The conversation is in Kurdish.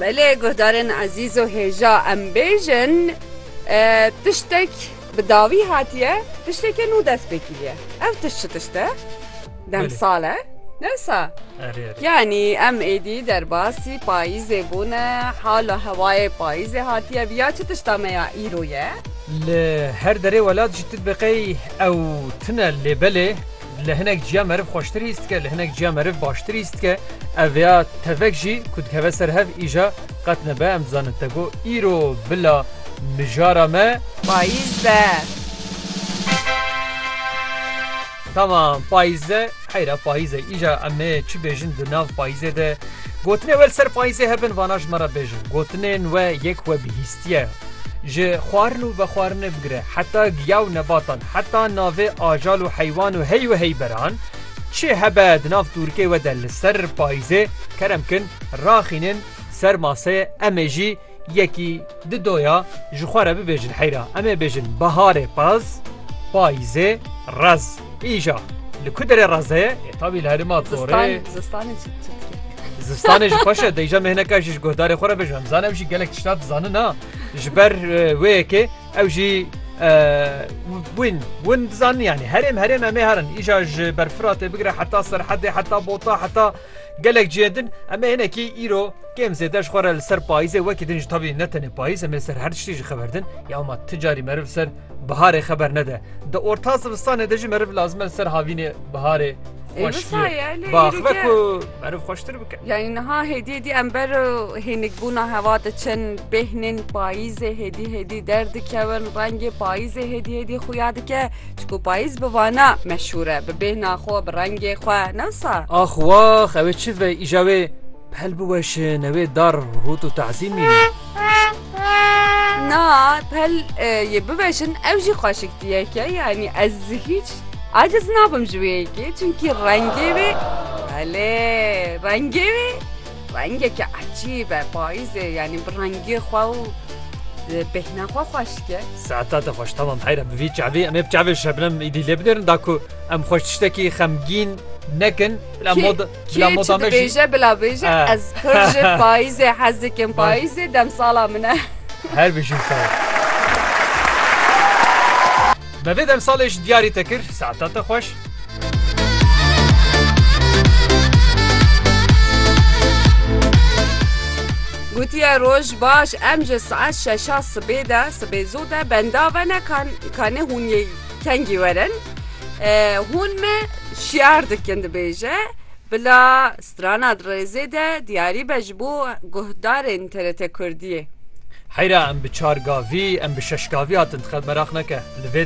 Belê guhdarên ezîz û hêja em bêjin tiştek bi dawî hatiye tiştekê nû dest pê kiriye. Ev tişt çi tişt e? Demsal e? Dewsa? Yanî em êdî derbasî payîzê bûne hala hewayê payîzê hatiye viya çi tişta me ya îro ye? Li her derê welat jî tu dibe qey ew tune lê belê. Li hinek ciya meriv xweştir hîs dike, li hinek ciya meriv baştir hîs dike. Ev vêya tevek jî ku dikeve ser hev îja qet nebe. Em dizanin te got îro bila mijara me Payîz be. Tamam payîz be. Heyra payîz e. Îja em ê çi bêjin di nav payîzê de? Gotinê we li ser payîzê hebin vana ji me re bêjin. Gotinên we yek we bihîst. ye. Ji xwarin û vexwarinê bigire heta giya û nebatan, heta navê ajal û heywan û hey û heyberan, çi hebe di nav tûrikê we de li ser payîzê kerem bikin, raxînin ser maseyê, em ê jî yekî di do ya ji xwe re bibêjin heyra. Em ê bêjin, Biharê paz, payîzê rez. Îja li ku derê re zeye ê tabî li herîma zorê. Zistanê çi çi tike. Zistanê ji xweş e deyja mehneka jî ji guhdarê xwe re bêje em zan ew jî gelek tişta dizanin a ji ber wê yekê ew jî win win dizan yanî herêm herêm em ê herin îja ji ber firatê bigire heta serhedê heta bota heta gelek ciyê din em ê hinekî îro kêm zêde ji xwe re li ser payîzê wekî din ji tabî ne tenê payîz em ê ser her tiştî ji xeber din ya ma ti carî meriv ser Biharê xeber nede. Di orta zivistanê de jî meriv lazim e li ser havînê biharê Ê, xweş wisa bîye. ye, lê Bax ve êrî ku meriv xweştir bike. Yani niha hêdî hêdî em ber e, hênikbûna heva diçin, bêhnên payîzê hêdî hêdî derdikevin, rengê payîzê hêdî hêdî xuya dike. Çku payîz bi vana meşhûr e, bi bêhna xwe, bi rengê xwe, ne wisa? Ax wax ew ê çi ve îja wê Hel biweşe newê dar rût û tazîm mîne. Na pel yê biweşin ew jî xweşiktiyeke yanî ez hiç aciz nabim ji wê yekê çunkî rengê wê belê rengê wê rengeke ecîb e payîzê yanî bi rengê xwe û bêhna xwe xweşke. Saeta te xweş tamam heyre bi vî çavê em ê bi çavê şebnem îdî lê bigerin da ku em xweş tiştekî xemgîn nekin Bila Kê- moda Kê bila çi moda me jî- dibêje bila bêje Ha. ez pir ji payîzê hez dikim payîzê demsala min e. her bijîn sağ ol. Me vê demsalê ji diyarî te kir, saeta te xweş. Gotiye roj baş em ji saet şeşa sibê de sibê zû de bendave ne kan kanê hûn yê kengî werin. Hûn me şiyar dikin dibêje bila strana di rêzê de diyarî be ji bo guhdarên TRT Kurdiyê. Heyra em bi çar gavî em bi şeş gavî hatin dixev meraq neke.